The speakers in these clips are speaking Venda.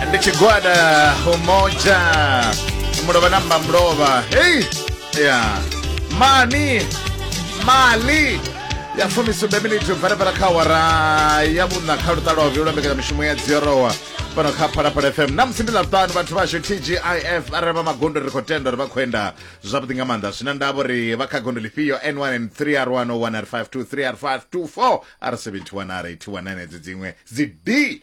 ndi tshigwada umoja mulovha na mbamulova hei ya mani mali ya fumisumbe miniti bvarabvara kha awara ya vhuṋa kha luṱa lwa vhuvhili lwa mbekanyamishumo ya dziorowa fhano kha phalaphala fm na musi ndi ḽaṱanu vhathu vhashu tgif arali vha magondo ri khou tenda uri vha khou enda zwavhuḓi nga maanḓa zwina ndavha uri vha kha gondo lifhio n 1 n 3 r 1 o 1 r 5 2 3 r 5 2 4 r 71 r 81 edzo dziṅwe dzi d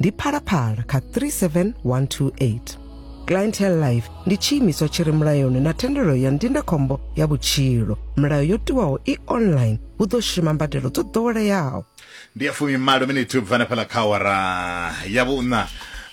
ndi phalaphala kha 37128 clientele life ndi tshiimiswa tshi re mulayoni na thendelo ya ndindakhombo ya vhutshilo milayo yo tiwaho i online hu ḓo shuma mbadelo dzo ḓoweleaho ndi ya fumi malo miniti u bva na fhala kha awara ya vhuṋa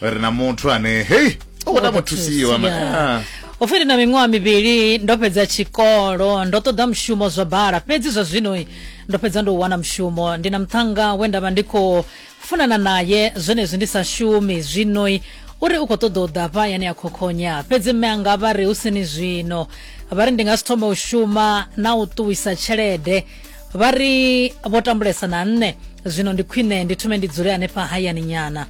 ri na muthu ane hei o kota muthusiwa ma- ah. upfi ndi na miṅwaha mivhili ndo fhedza tshikolo ndo ṱoḓa mushumo zwa bala fhedzi zwa zwino ndo fhedza ndo u wana mushumo ndi na muthannga we nda vha ndi khou funana naye zwenezwi ndi sa shumi zwinoi uri u khou ṱoḓa u ḓa fha yane ya khokhonya fhedzi mme anga vha ri hu sini zwino vha ri ndi nga si thome u shuma na u ṱuwisa tshelede vha ri vho tambulesa na nṋe zwino ndi khwine ndi thume ndi dzule hanefha hayani nyana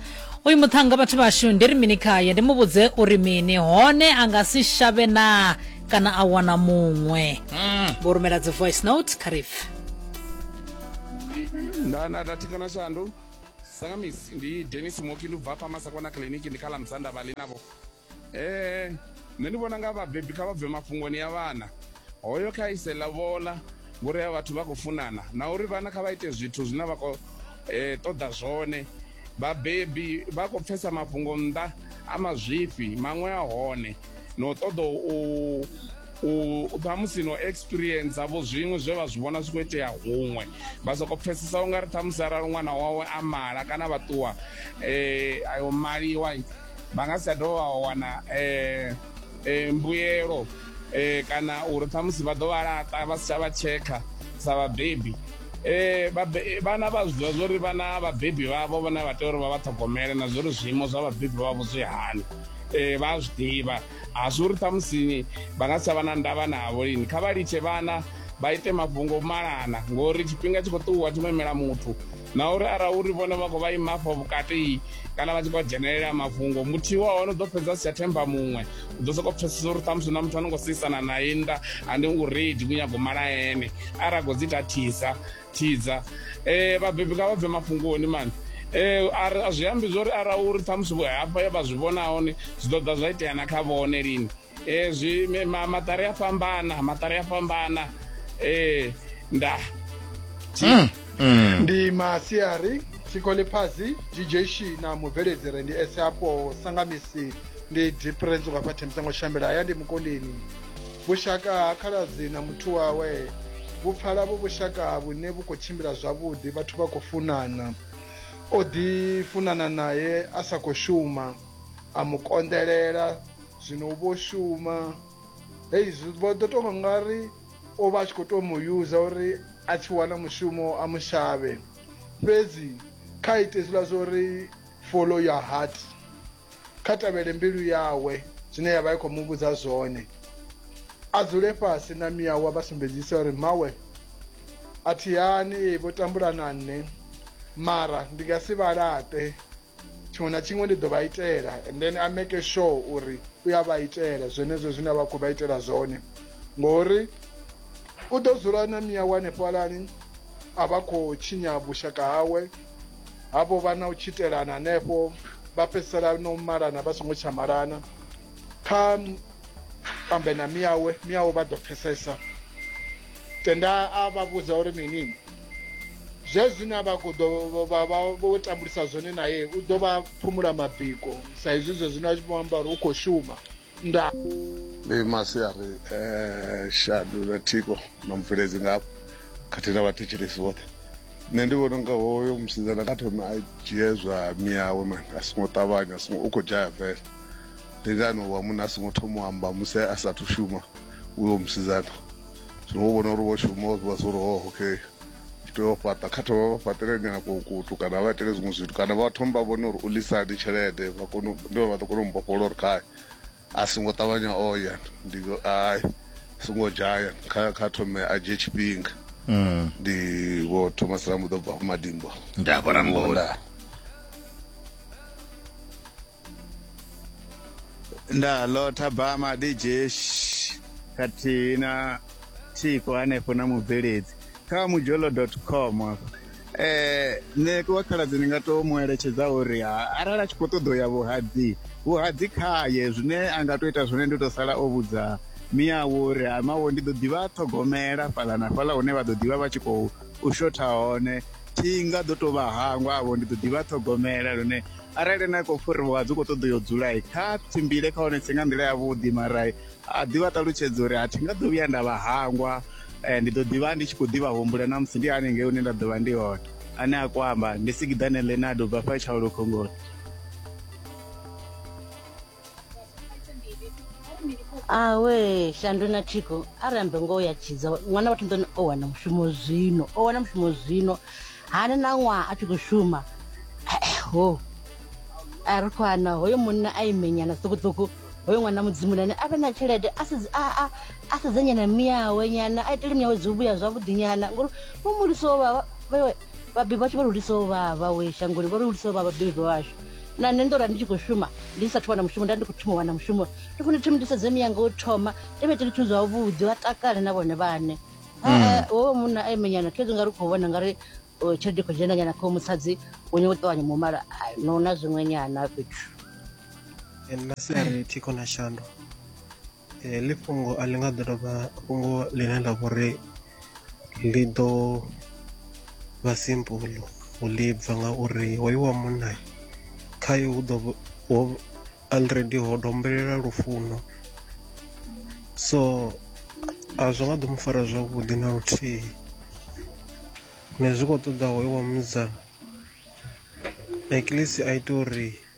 uyu muṱhannga vhathu vhashu ndi ri mini khaye ndi mu vhudze uri mini hone a nga si shavhe naa kana a wana muṅwe hmm. vho rumela dzi voice note kha rife nda nda nda thikana shandu sangamisi ndi denis moki ndi bva pama sakwana kiliniki ndi khala mzanda vhali navho eh nṋe ndi vhona nga vhabebi kha vha bve mafhungoni ya vhana hoyo kha ise lavhola ngori ya vhathu vha khou funana na uri vhana kha vha ite zwithu zwine vha khou eh, ṱoḓa zwone vhabebi vha khou pfesa mafhungo nnḓa a mazwifhi maṅwe a hone no ṱoḓa u u ṱhamusi no experience vho zwiṅwe zwe vha zwi vhona zwi khou itea huṅwe vha sokou pfhesesa u nga ri ṱhamusi arali ṅwana wawe a mala kana vha ṱuwa um ayo maliwa vha nga si tsha dovha vha wana um mbuyelo um kana uri ṱhamusi vha ḓo vha laṱa vha si tsha vha tshekha sa vhabebi Eh, eh vhana vha zwi ḓivha zwo ri vhana vhabebi vhavho vhone vha tea uri vha vha ṱhogomele na zwo ri zwiimo zwa vhabebi vhavho zwi hani e, vha a zwi ḓivha a zwi uri ṱhamusi vha nga si tsha vha na ndavha navho lini kha vha litshe vhana vha ite mafhungo malana ngori tshifhinga tshi khou ṱuwa tshi khou imela muthu na uri ara uri vhone vha khou vha ima afho vhukati kana vha tshi khou dzhenelela mafhungo muthihi wa hone u ḓo fhedza si tsha themba muṅwe u ḓo sokou pfesesa uri ṱhamusi na muthu a no khou seisana naye nnḓa ande u redi ku nyago mala ene ara khou dzi tathisa tshidza um vhabebi nga vha bve mafhungoni mani um a zwi ambi zwo ri ara uri ṱhamusi hafha ya vha zwi vhona hone zwi ḓo ḓa zwa itea na kha vhone lini um zwi maṱari a fhambana maṱari a fhambana um nda hmm, hmm. ndi masiari sikoliphazi djshi na mubveledzire ndi eseapo sangamisi ndi diprenzo vhafha thembisango shambela haya ndi mukondeni Vhushaka ha khaladzi na muthu wawe vhu pfala vhu vhushaka vhune vhu khou tshimbila zwavhuḓi vhathu vha khou funana. O ḓi funana nae a sa khou shuma a mu konḓelela zwino u vho shuma hei zwi vho ḓo tou vha nga ri o vha a tshi khou tou mu yuza uri a tshi wana mushumo a mu shavhe fhedzi kha ite hezwiḽa zwo ri follow your heart kha tevhele mbilu yawe zwine ya vha i khou mu vhudza zwone a dzule fhasi na miawa vha sumbedzise uri mmawe a thihani ee vho tambula na nṋe mara ndi nga si vha laṱe tshiṅwe na tshiṅwe ndi ḓo vha itela and then a make sure uri u ya vha itela zwenezwo zwine a vha khou vha itela zwone ngori u ḓo dzula na miawa hanefhalani a vha khou tshinya vhushaka hawe havho vha na u tshitelana hanefho vha fhedzisela no malana vha songo tsha malana kha ambe na miyawe miyawe vha ḓo pfesesa tenda a vha vhudza uri mini zwe zwine a vha khou ḓo vha vha vho tambulisa zwone naye u ḓo vha phumula mabiko sa izwi zwe zwino a tshi vho amba uri u khou shuma Nda. Ndi masiari eh, shadu na thiko na mubveledzi ngavho khathihi na vhathetshelesi vhoṱhe nṋe ndi vhona unga hoyo musidzana kha thome a dzhie zwa miyawe mani a songo ṱavhanya a songo u khou dzhaya bvela ndi ngani wa munna a songo thoma u amba musi a sathu shuma uyo musidzana zwino wo vhona uri wo shuma wa zwiwa zwo uri oh okay tshi tea u fhaṱa kha thoma vha fhaṱele nyana kukutu kana vha itele zwiṅwe zwithu kana vha thoma vha vhone uri u lisani tshelede vha kone ndi vha ḓo kona u mbofhola uri khae a songo ṱavhanya o ya ndi ai songo dzhaya kha kha thome a dzhie tshifhinga mm. ndi vho thomas ramuḓo bva madimbo nda vho ramuḓo nda lotha bama dijesh khathihi na thiko hanefho na mubveledzi kha mujolo com afho eh nṋe wa khaladzi ndi nga to mu eletshedza uri ha- arali a tshi khou ṱoḓa u ya vhuhadzi vhuhadzi khaye zwine a nga to ita zwone ndi u to sala o vhudza miyawo uri ha mawo ndi ḓo ḓivha a ṱhogomela fhaḽa na fhaḽa hune vha ḓo ḓivha vha tshi khou u shotha hone thi nga ḓo to vha hangwa avho ndi ḓo ḓivha a ṱhogomela lune arali ene a khou fhuriwa dzi khou ṱoḓa u yo dzula kha tshimbile kha hone tshi nga nḓila yavhuḓi mara a ḓi vha ṱalutshedza uri a thi nga ḓo vhuya nda vha hangwa eh, ndi ḓo ḓivha ndi tshi khou ḓivha humbula na musi ndi hanengei hune nda ḓo vha ndi hone ane a kwamba ndi sigiḓane lenado bva fha tshaulu khongoni awe shandu na thiko arambe ngo ya tshidza ṅwana vhathu nḓoni o wana mushumo zwino o wana mushumo zwino hani na ṅwaha a tshi khou shuma ho a ri khou ana hoyo munna a imenyana ṱukuṱuku hoyo ṅwana mudzimu nane a vhe na tshelede a sedze- a- a- a sedzenyana miawe nyana a itele miawe dzi vhuya zwavhuḓi nyana ngori vho muliso vha vha- vha- Vhabebi vhashu vha ri hulisa u vha vha we shangoni, vho ri hulisa u vha vhabebi vhashu. Na nṋe ndo ra ndi tshi khou shuma, ndi sa thu wana mushumo, nda ndi khou thoma u wana mushumo. Ndi khou ni thoma ndi sedze miyanga u thoma, ndi vha itele zwithu zwavhuḓi, vha takale na vhone vhaṋe. Ha-a, mm. hoyo munna a imenyana, khezwi nga ri khou vhona nga ri tshelede i khou dzhena nyana kha musadzi, u nyawo ṱavhanya mumala, no na zwiṅwe nyana fhethu. And na si a ri thi khona shandu. heḽi fhungo a ḽi nga ḓo dovha fhungo ḽine ḽa vha uri ḽi ḓo vha simple u ḽi bva ngauri hoyu wa munna khayo hu ḓo ho already ho dombelela lufuno so a zwi nga ḓo mu fara zwavhuḓi na luthihi ne zwi khou ṱoḓa hoyo wa musidzana at least a ite uri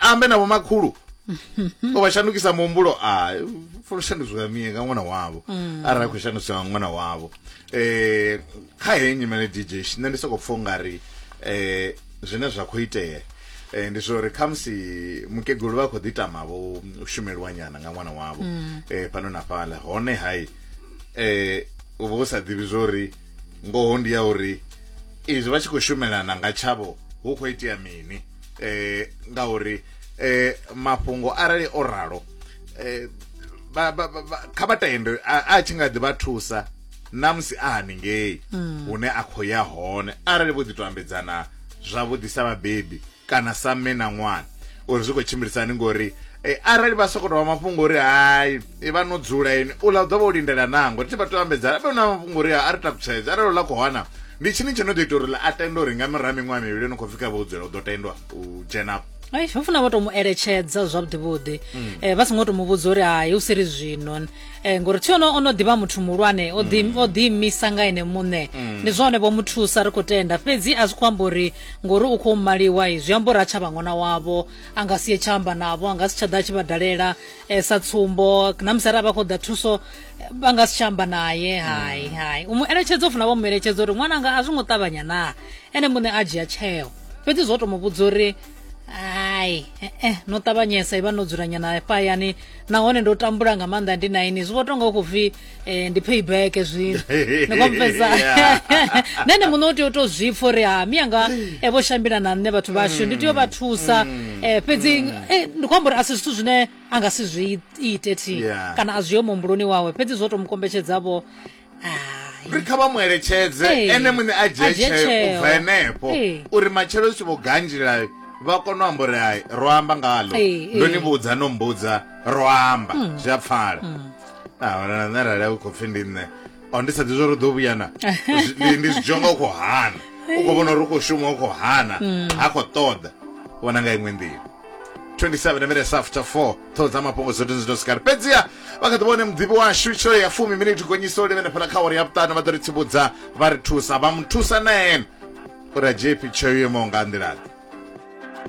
ambe na vhomakhulu o vha shandukisa muhumbulo a funa shandukiswa mie nga ṅwana wavho mm. arali a khou shandukiswa nga ṅwana wavho eh kha heyi nyimele dj nṋe ndi sokou pfha ungari eh zwine zwa khou itea eh ndi zwori khamusi mukegulu vha khou ḓi tama vho shumelwa nyana nga ṅwana wavho mm. eh fhano na fhaḽa hone hai eh u vha u sa ḓivhi zwori ngoho ndi ya uri izwi vha tshi khou shumelana nga tshavho hu khou itea mini eh ngauri eh mafhungo arali o ralo eh ba ba kha vha tende a tshi nga ḓi vha thusa namusi a haningei hmm. hune a khou ya hone arali vho ḓi to ambedzana zwavhuḓi sa vhabebi kana sa mme na ṅwana uri zwi khou tshimbilisani ngori eh, arali vha sokou tovha mafhungo uri hai Ivha no dzula ini uḽa u ḓo vha o lindela naa? Ngo ri tshi vha tea u ambedzana vhe na mafhungo uri a ri takutshedze arali uḽa khou hana ndi tshini tsho no ḓo ita uri ḽa a tende uri nga murahu ha miṅwaha mivhili no khou pfhi kha vha u dzula u ḓo tendwa u dzhena afho Ai, ho funa vha tou mu eletshedza zwavhuḓi vhuḓi eh, vha songo tou mu vhudza uri hai u si ri zwino eh, ngori thi ono ono ḓivha muthu muhulwane o ḓi o ḓi imisa nga ene muṋe ndi zwone vho mu thusa ri khou tenda fhedzi a zwi khou amba uri ngori u khou maliwa i zwi amba uri a tsha vha ṅwana wavho a nga si ye tsha amba navho a nga si tsha ḓa a tshi vha dalela e, sa tsumbo na musi arali vha khou ḓa thuso vha nga si tsha amba naye hai mm. hai u mu eletshedza u funa vha mu eletshedza uri ṅwananga a zwi ngo ṱavhanya naa ene muṋe a dzhia tsheo fhedzi zwo to mu vhudza uri hai eh, eh, no ṱavhanyesa i vha no dzulanyana fhayani nahone ndo tambula nga maanḓa ndi na ini zwi vho tonga u khou pfhi eh ndi payback zwino ni kompeza nene muno u tea u to zwi pfa uri ha miyanga e vho shambila na nṋe vhathu vhashu ndi tea u vha thusa eh fhedzi eh, ndi khou amba uri a si zwithu zwine a nga si zwi ite thi Yeah. kana a zwi yo muhumbuloni wawe fhedzi zwo to mu kombetshedzavho hai ri kha vha mu eletshedze Ee. ene muṋe a dzhie A dzhie tsheo tsheo. ubva henefho Ee. uri matshelo zwi tshi vho ganjila vha kone u amba uri hai ro amba ngalo Ee, ndo ee. ni vhudza no mbudza ro amba zwi a pfala ahona nṋe arali a u khou pfi ndi nṋe o ndi sa ḓi zwo ri ḓo vhuya na Zwi- ndi- ndi zwidzhonga u khou hana u khou vhona uri u khou shuma u khou hana ha khou ṱoḓa vhona nga iṅwe nḓila 27 minutes after 4 ṱhoho dza mafhungo dzo tinzi ndo sikari fhedziha vha kha ḓi vhone muḓivhi washu tsho ya fumi miniti gonyisa u livhene fhala kha uri ya vhuṱanu vha ḓo ri tsivhudza vha ri thusa vha mu thusa na ene uri a dzhie phi tsheo yo imaho nga nḓilaḓe